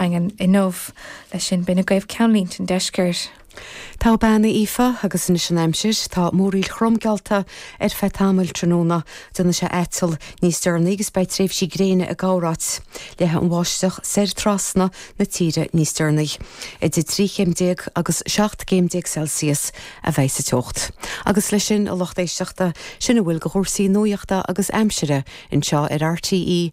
Daingean inniu. Leis sin, b'in agaibh ceannlínte an deiscirt. Tá, a bhean, Aoife agus anois an aimsir, tá múraíl throm geallta ar feadh tamaill tráthnóna, déanfaidh sé aiteall níos deireanaí agus beidh tréimhsí gréine ann amárach. Leathfaidh an bháisteach soir trasna na tíre níos deireanaí. Idir 13 chéim agus 17 gcéim Celsius a bheidh sa teocht. Agus leis sin a lucht éisteachta, sin a bhfuil de chúrsaí nuachta agus aimsire anseo ar RTÉ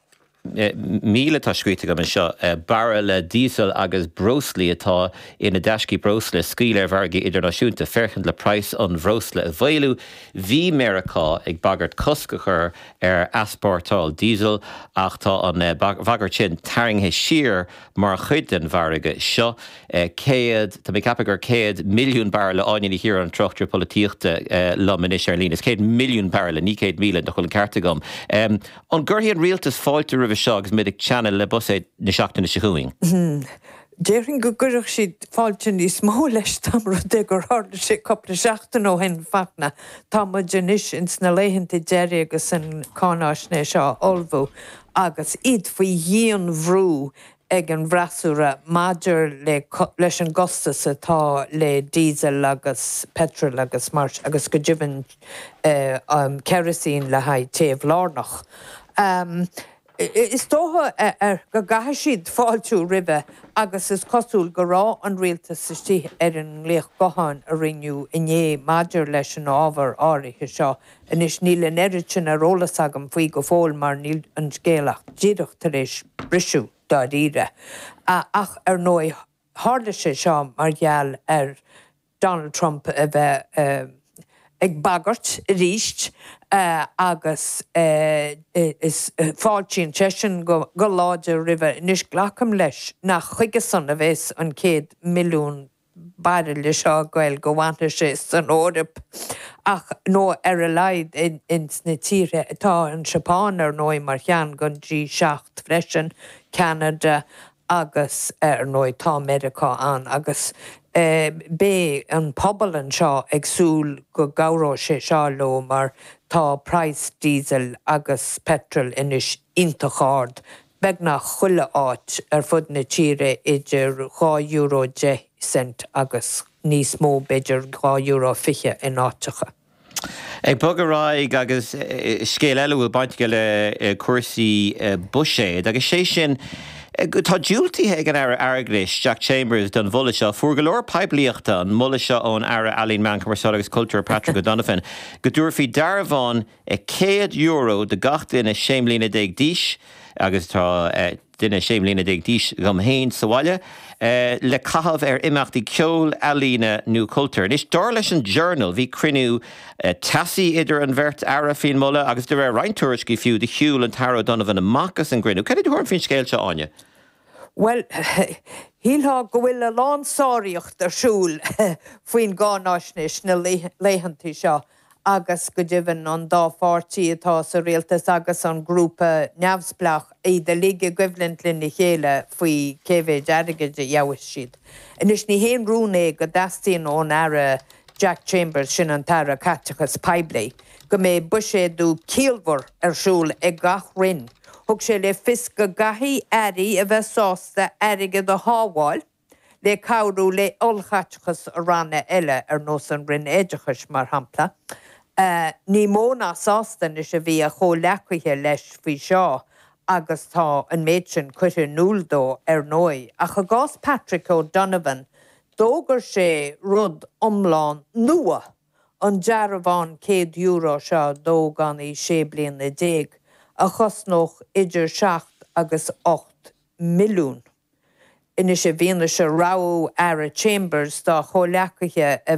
Míle atá scríofa agam anseo, bairille diesel agus breoslaí atá ina dtaiscí breosla a scaoileadh ar mhargadh idirnáisiúnta, féachaint le praghas an bhreosla a mhaolú. Bhí Meiriceá ag bagairt cosc a chur ar easportáil diesel, ach tá an bhagairt sin tarraingthe siar mar chuid den mhargadh seo. Céad, tá mé ag ceapadh gur céad, milliún bairille, Áine Ní Chiaráin, an tráchtaire polaitíochta, liom anois ar an líne. Is céad milliún bairille, ní céad míle, nach bhfuil an ceart agam. An gcuirfidh an rialtas fáilte roimhe seo agus muid ag teannadh le Buiséad na seachtaine seo chugainn? Déarfainn go gcuirfeadh siad fáilte níos mó roimhe dá mba rud é gur tharla sé cupla seachtain ó shin. Fachtna, tá muid anois ins na laethanta deiridh agus an cáináisnéis á ullmhú agus iad faoi dhianbhrú ag an bhfreasúra maidir le leis an gcostas atá le diesel agus petrol agus mar agus go deimhin kerosene le haghaidh téamh lárnach. Is dócha go gcaithfidh siad fáiltiú roimhe agus is cosúil go raibh an rialtas istigh ar an nglaoch gutháin a rinneadh inné maidir leis an ábhar áirithe seo. Anois, níl an oiread sin ar eolas agam faoi go fóill mar níl an scéal ach díreach tar éis briseadh, dáiríre. Ach ar ndóigh, tharla sé seo mar gheall ar Donald Trump a bheith ag bagairt arís agus fáiltíonn seisean go láidir roimhe. Anois, glacaim leis nach chuige-san a bheas an 100 milliún bairille seo ag dul, go bhfanfaidh sé san Eoraip ach, nó ar a laghad ins na tíortha atá, an tSeapáin, ar ndóigh, mar cheann den G7 freisin, Ceanada agus, ar ndóigh, tá Meiriceá ann. Agus beidh an pobal anseo ag súil go gcabhródh sé seo leo mar tá praghas diesel agus petrol anois iontach ard beagnach chuile áit ar fud na tíre idir dhá euro deich gcent agus níos mó, b'fhéidir dhá euro fiche in áiteacha. Ag bogadh ar aghaidh, agus scéal eile a bhfuil baint aige le cúrsaí buiséid, agus sé sin tá diúltaithe ag an Aire Airgid, Jack Chambers don mholadh seo. Fuair go leor poiblíochta an moladh seo ón Aire Ealaíon, Meán Cumarsáide agus Cultúir, Patrick O'Donovan, go dtabharfaí dearbhán, €100 do gach duine 16 mbliana d'aois, agus tá duine 16 mbliana d'aois dhom fhéin sa bhaile, le caitheamh ar imeachtaí ceoil, ealaíne nó cultúir. Anois, dar leis an Journal, bhí cruinniú teasaí idir an bheirt Aire faoin moladh, agus de réir roinnt tuairiscí fiú, do shiúl an tAire O'Donovan amach as an gcruinniú. Cad é do thuairim faoin scéal seo, Áine? Bhuel, shílfeá go bhfuil a lán sáraíocht ar siúl faoin gcáináisnéis na laethanta seo. agus go deimhin an dá pháirtí atá sa rialtas agus an grúpa neamhspleách, iad uilig i gcoimhlint lena chéile faoi cé mhéid airgid a gheobhaidh siad. Anois, ní haon rún é go dteastaíonn ón Aire Jack Chambers, sin an tAire Caiteachais Poiblí, go mbeidh buiséadú ciallmhar ar siúl ag gach roinn. Thug sé le fios go gcaithfidh airí a bheith sásta airgead a shábháil, le cabhrú le ollchaiteachas ranna eile ar nós an Roinn Oideachais, mar shampla. Ní mó ná sásta anois a bhí a chomhleacaithe leis faoi seo agus tá an méid sin curtha in iúl dó ar ndóigh. Ach i gcás Patrick O'Donovan, d'fhógair sé rud iomlán nua, an dearbhán €100 seo d'ógánaigh sé bliana déag, a chosnódh idir seacht agus ocht milliún. Anois, i bhfianaise rabhadh Aire Chambers dá chomhleacaithe a.